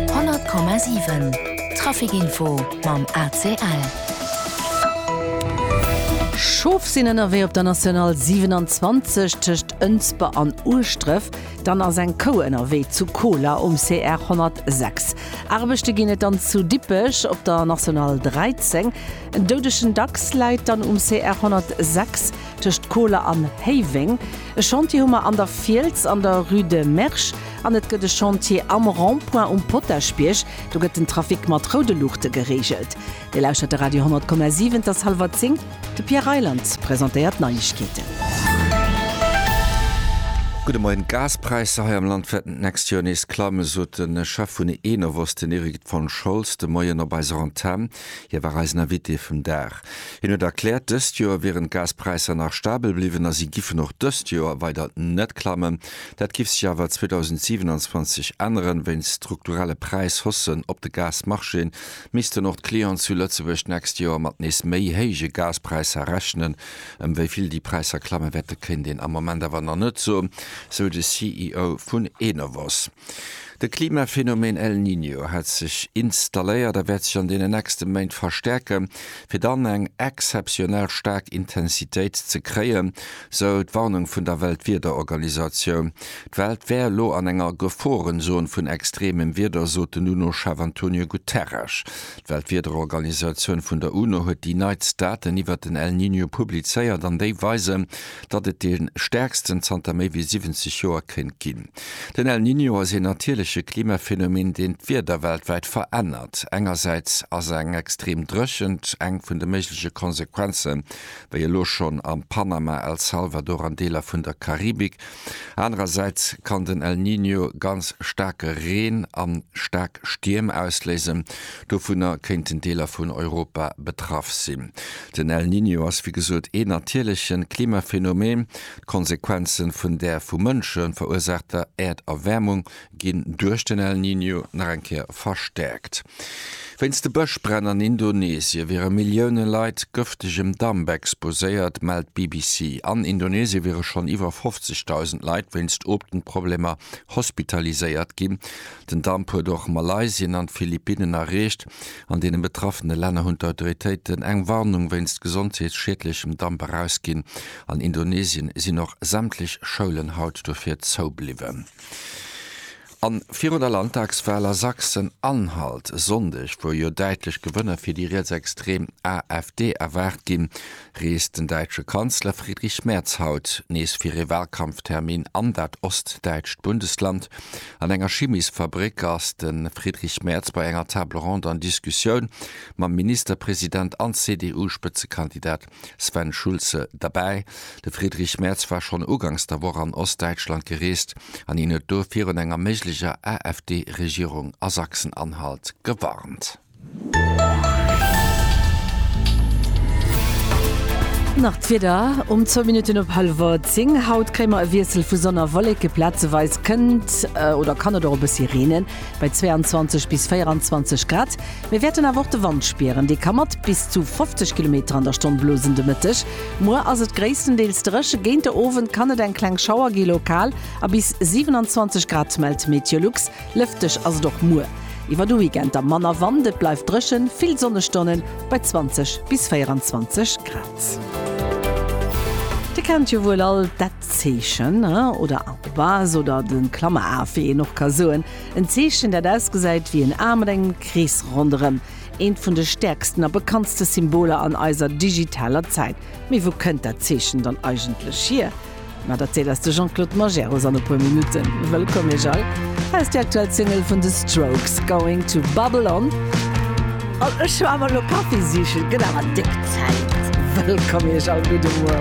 100,7 Trafic info mam ACL. Schof sinn ënnerwee op der National 27 tëscht Ënsber an Ueschdref. Dann ass eng Kou ënnerwee zu Koler um CR 106. Aarbechte ginn et dann zu Dippech op der National 13. En doudegen Dachs läit dann um CR 106 tëscht Koler an Héiweng. E Chantier hu mer an der Fiels an der Rue de Mersch. An et gëtt e Chantier am Rond-point um Potaschbierg, do gëtt den Trafic mat roude Luuchte gereegelt. Dir lauschtert de Radio 10,7, et ass hallwer zéng, de Pierre Reyland presentéiert d'Neiegkeeten. Gudde Moien, D'Gaspräisser hei am Land wäerten d'nächst Joer nees klammen, sot de Chef vun Enovos, den Erik von Scholz de Moien op eiser Antenn. Hie war eisen Invité vum Dag. Hien huet erkläert, dëst Joer wieren d'Gaspräisser nach stabel bliwwen a si giffen och dëst Joer weider net klammen. Dat giff sech awer 2027 änneren. Wéinst strukturelle Präishaussen op de Gasmarchéen missten och d'Clients zu Lëtzebuerg d'nächst Joer mat nees méi héije Gaspräisser rechnen. Ëm wéi vill déi Präisser klamme wäerte kéint een am Moment awer nach net soen, sou de CEO vun Enovos. De Klimaphenomeen El Niño hat sech installéiert a wäert sech an deenen nächste Méint verstäerke fir dann eng exzeptionell staark Intensitéit ze kréien, sou d'Warnung vun der Weltwiederorganisatioun. D'Welt wär elo an enger Geforenzon vun extremem Wieder, sot den UNO-Chef Antonio Guterres. D'Weltwiederorganisatioun vun der UNO huet déi neitst Daten iwwert den El Niño publizéiert an déi weisen, datt et dee stäerksten zanter méi wéi 70 Joer kéint ginn. Den El Niño ass een natierleche Klimaphänomen, deen d'Wieder weltwäit verännert. Engersäits ass eng extrem Dréchent eng vun de méigleche Konsequenzen, wéi elo schonn am Panama, El Salvador an Deeler vun der Karibik. Anerersäits kann den El Niño ganz staarke Reen a staark Stierm ausléisen. Dovunner kéinten Deeler vun Europa betraff sinn. Den El Niño ass wéi gesot een natierlechen Klimaphänomen. D'Konsequenzen vun där vu Mënsche verursaachter Äerderwäermung ginn duerch den El Niño nach eng Kéier verstäerkt. Wéinst de Bëschbränn an Indonesien wiere Millioune Leit gëftegem Damp exposéiert, mellt d'BBC. An Indonesien wiere schonn iwwer 50.000 Leit wéinst Otemproblemer hospitaliséiert ginn. Den Damp huet och Malaysien an d'Philippinnen erreecht. An deene betraffene Länner hunn d'Autoritéiten eng Warnung wéinst gesondheetsschiedlechem Damp erausginn. An Indonesien sinn och sämtlech Schoulen haut dofir zou bliwwen. An virun der Landtagswahl a Sachsen-Anhalt e Sonndeg, wou jo däitlech Gewënner fir déi rietsextrem AfD erwaart ginn, reest den däitsche Kanzler Friedrich Merz haut nees fir ee Wahlkampftermin an dat ostdäitscht Bundesland. An enger Chimisfabréck ass de Friedrich Merz bei enger Table ronde an Diskussioun mam Ministerpresident an CDU-Spëtzekandidat Sven Schulze, derbäi. De Friedrich Merz war schonn ugangs der Woch an Ostdäitschland gereest an hien huet do virun enger méiglecher AfD-Regierung a Sachsen-Anhalt gewarnt. Nach d'Wieder um zwou Minutten op hallwer zéng. Haut kréie mer e Wiessel vu Sonn a Wolleke, plazeweis kënnt oder kann et och e bëssi reenen, bei 22 bis 24 Grad. Mir wäerten awer och de Wand spieren, dee ka mat bis zu 50 Kilometer an der Stonn blosen. De Mëtteg, muer ass et gréisstendeels dréche, géint de Owend kann et eng kleng Schauer gi, lokal a bis 27 Grad, mellt Meteolux. Lëfteg ass et och muer iwwer de Weekend, da manner Wand. Et bleift dréchen, vill Sonnestonnen bei 20 bis 24 Grad. Dir kennt jo wuel all dat Zeechen, oder Arrobase oder de Klammeraf, wéi een och ka soen. En Zeechen, dat ausgesäit wéi en A mat engem Krees ronderëm. Eent vun de stäerksten a bekanntste Symboler an eiser digitaler Zäit. Mee wou kënnt dat Zeechen dann eigentlech hier? Dat erzielt eis de Jean-Claude Majerus an e puer Minutten. Wëllkomm Iech all! Hei ass déi aktuell Single vun The Strokes, Going to Babylon. An ech war mol elo Kaffi sichen, gëtt awer déck Zäit. Wëllkomm Iech all! Gudde Muer!